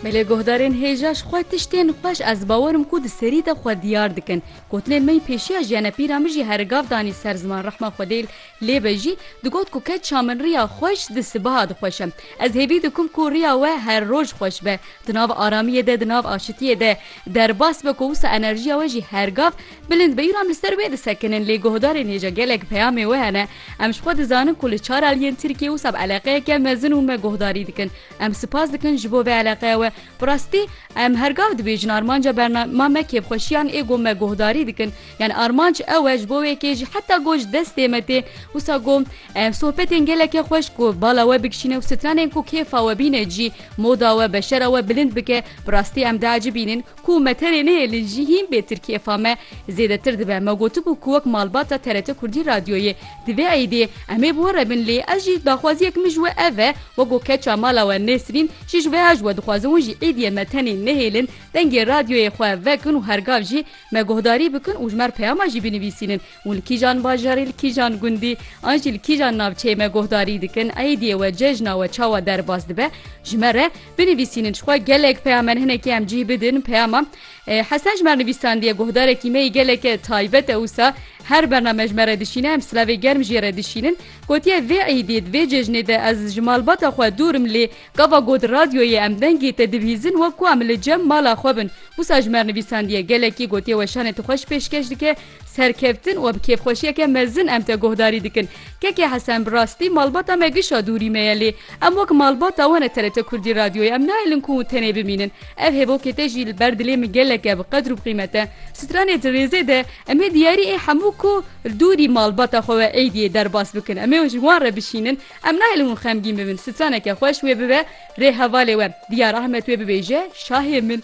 Me lê guhdarên hêja ji xwe tiştên xweş ez bawerim ku di serî de xwe diyar dikin. Gotinên me yên pêşiya jî hene pîra min jî here gav danî ser ziman rehma xwedê lê be jî digot ku ke çiya min riya xweş di sibaha dixweşe. Ez hêvî dikim ku riya we her roj xweş be di nav aramiyê de di nav aşitiyê de derbas be ku wisa enerjiya we jî her gav bilind be îro em li ser wê disekinin lê guhdarên hêja gelek peyamê we hene em ji xwe dizanin ku li çar aliyên Tirkiyê wisa bi eleqeyeke mezin û me guhdarî dikin Em sipas dikin ji bo vê eleqeya we. Bi rastî em her gav dibêjin armanca bernama me kêfxweşiyan ê ku me guhdarî dikin. Yan armanc ew e ji bo wê kê jî heta ku ji destê me tê. Wisa ku em sohbetên gelekî xweş ku bala we bikişîne û stranên ku kêfa we bîne cî moda we, beşera we bilind bike, bi rastî em diecibînin. Ku me terê nehêlin jî hîn bê tirkiyê fame zêdetir dibe. Me gotibû ku wek malbata TRT Kurdî Radyoyê di vê eydê em ê bi we re bin lê ez jî daxwaziyek min ji we ev e weko keça mala we Nêsrîn jî ji wêha ji we dixwazin hûn jî êdiyê me tenê nehêlin dengê radyoyê xwe vekin û hergav jî me guhdarî bikin û ji me re peyama jî binivîsînin û li kîjan bajarê, li kîjan gundî an jî li kîjan navçeyê me guhdarî dikin, aîdiyê we, cejna we çawa derbas dibe ji me re? Binivîsînin jixwe gelek peyamen hinekî em cîh bidin peyama Hesen ji me re nivîsandiye, guhdarekî me yî geleke taybet e wisa her bername ji me re dişîne, em silavê germ jê re dişînin. Gotiye vê aîdiyê di vê cejnê de ez ji malbata xwe dûr im lê gava got radyoyê em dengê te dibihîzin wek ku em li cem mala xwe bin. Wisa ji me re nivîsandiye gelekî gotiye weşanê tu xweş pêşkeş dike, serkeftin û bi kêfxweşiyeke mezin em te guhdarî dikin. Keke Hesen bi rastî malbata me gişa dûrî me ye lê em wek malbata wan e TRT Kurdî Radyoyê em nahêlin ku tenê bimînin. Ev hêvokê te jî li ber dilê min geleke bi qedr û bi qîmet e. Stranê di rêzê de em ê diyarî ê hemû ku li dûrî malbata xwe we êdiyê derbas bikin. Em ê ji wan re bişînin. Em nahêlin hûn xemgîn bibin. Straneke xweş wê bibe rê hevalê we. Diyar Ahmet wê bibêje şahê min.